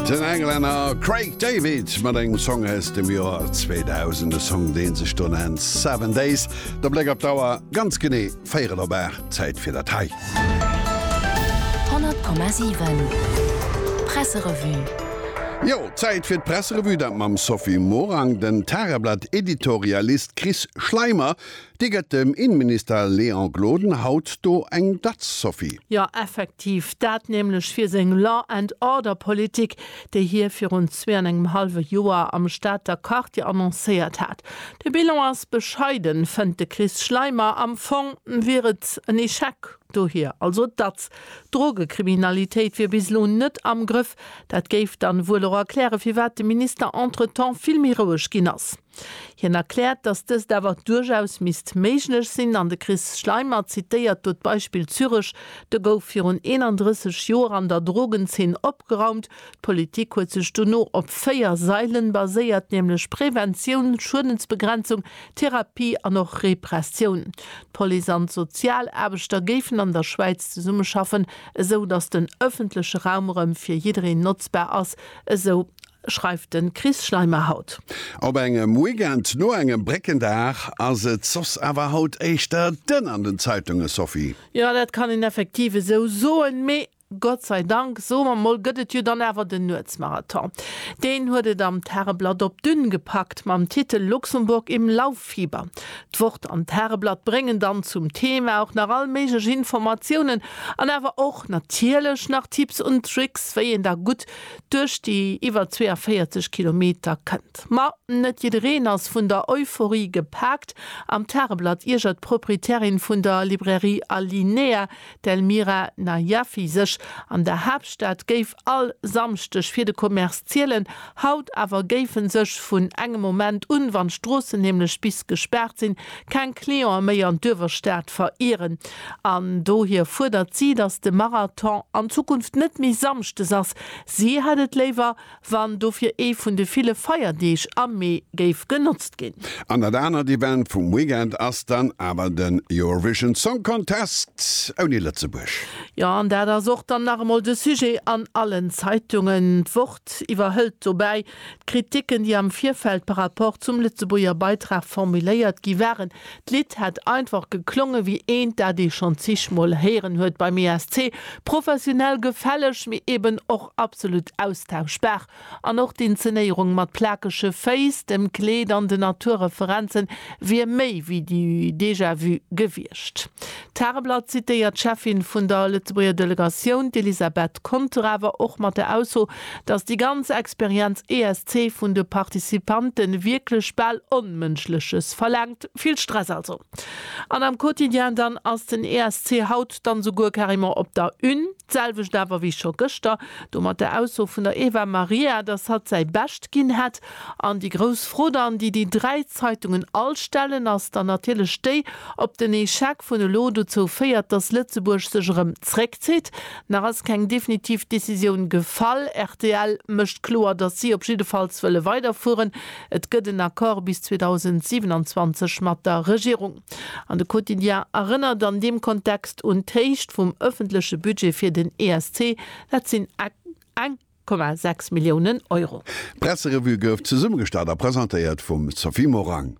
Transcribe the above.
Den Englänner Craig David mat engem Song aus dem Joer 2000, e Song dee sech do nennt Seven Days. De Bléck op d'Auer, ganz genee véierel op aacht, Zäit fir dat hei. 100,7 Presserevue. Jo, Zäit fir d'Presserevue, dat mam Sophie Morang, den Tageblatt-Editorialist Chris Schleimer Dir gëtt dem Innenminister Léon Gloden haut do eng Datz, Sophie. Jo, effektiv, dat nämlech fir seng Law and Order Politik, déi hie virun zwee an engem hallwe Joer am Stater Quartier annoncéiert hat. De Bilan ass bescheiden, fënnt de Chris Schleimer. Am Fong wier et en Echec, dohier also d'Datz. D'Drogekriminalitéit wier bis elo net am Grëff. Dat géif dann wuel och erklären, firwat de Minister entretemps vill méi roueg ginn ass. Hien erkläert, datt dëst awer duerchaus misst méiglech sinn an de Chris Schleimer zitéiert do d'Beispill Zürech, Do gouf virun 31 Joer an der Drogenzeen opgeraumt. D'Politik huet sech dono op véier Sailen baséiert, nämlech Preventioun, Schuedensbegrenzung, Therapie an och Repressioun. D'Police an d'Sozialaarbechter géifen an der Schwäiz zesummeschaffen, esou datt den ëffentleche Raum erëm fir jiddereen notzbar ass, esou schreift de Chris Schleimer haut. Op engem Weekend no engem Bréckendag ass et soss awer haut éischter dënn an den Zeitunge, Sophie. Jo, dat kann een effektiv esou soen. Mee Gott sei Dank, soe mer mol, gëtt et jo dann awer den Nuetsmarathon. Deen huet et am Tageblatt op d'Ünn gepackt mam Titel Luxemburg im Lauffieber. D'Wort an d'Tageblatt bréngen dann zum Thema och nach all méiglech Informatiounen an awer och natierlech nach Tipps und Tricks, wéi een da gutt duerch déi iwwer 42 Kilometer kënnt. Ma net jiddereen ass vun der Euphorie gepaakt. Am Tageblatt iergert d'Proprietärin vun der Librairie Alinea, d'Elmira Najafi, sech. An der Haaptstad géif all Samschdeg fir de Commerce zielen. Haut awer géife sech vun engem Moment un, wann d'Stroossen nämlech bis gespaart sinn, keng Cliente méi an d'Uewerstad verieren an dohier fuerdert si, datt de Marathon an Zukunft net méi samschdes ass. Si hätt et léiwer, wann dofir ee vun de ville Feierdeeg am Mee géif genotzt ginn. An dat anert Event vum Weekend ass dann awer den Eurovision Song Contest ouni Lëtzebuerg. Jo, an dat ass och dann nach emol de Sujet an allen Zeitungen. D'Wort iwwerhëlt dobäi D'Kritiken, déi am Virfeld par rapport zum Lëtzebuerger Beitrag formuléiert gi waren, d'Lidd hätt einfach geklonge wéi eent, dat ee schonn zigmol héieren huet beim ESC, professionell gefälleg, mee eben och absolut austauschbar. An och d'Inzenéierung mat plakege Féiss, dem Kleed an den Naturreferenzen wier méi wéi du déjà vu gewiescht. D'Tageblatt zitéiert d'Cheffin vun der Lëtzebuerger Delegatioun, d'Elisabeth Conter, awer och mat der Ausso, Dass déi ganz Experienz esc vun de Participantë wierklech bal Onmënschleches verlaangt, vill Stress also. An am Quotidien dann ass den esc haut dann souguer carrément op der Une. D'selwecht awer wéi scho gëschter do mat der Ausso vun der Eva Maria, dass hatt säi Bescht ginn hätt. An déi grouss Fro dann, déi déi dräi Zeitungen all stellen, ass dann natierlech déi, ob den Echec vun elo dozou féiert, dass Lëtzebuerg sech erëm zréckzitt. Nach ass keng definitiv Decisioun gefall. Rtl mécht kloer, datt si op jiddefalls wëlle weiderfueren. Et gëtt en Accord bis 2027 mat der Regierung. An de Quotidien erënnert an deem Kontext un d'Héicht vum ëffentleche Budget fir den ESC, dat sinn eng Komma sechs Milliounen Euro. D'Presserevue gouf zesummegestallt a presentéiert vum Sophie Morang.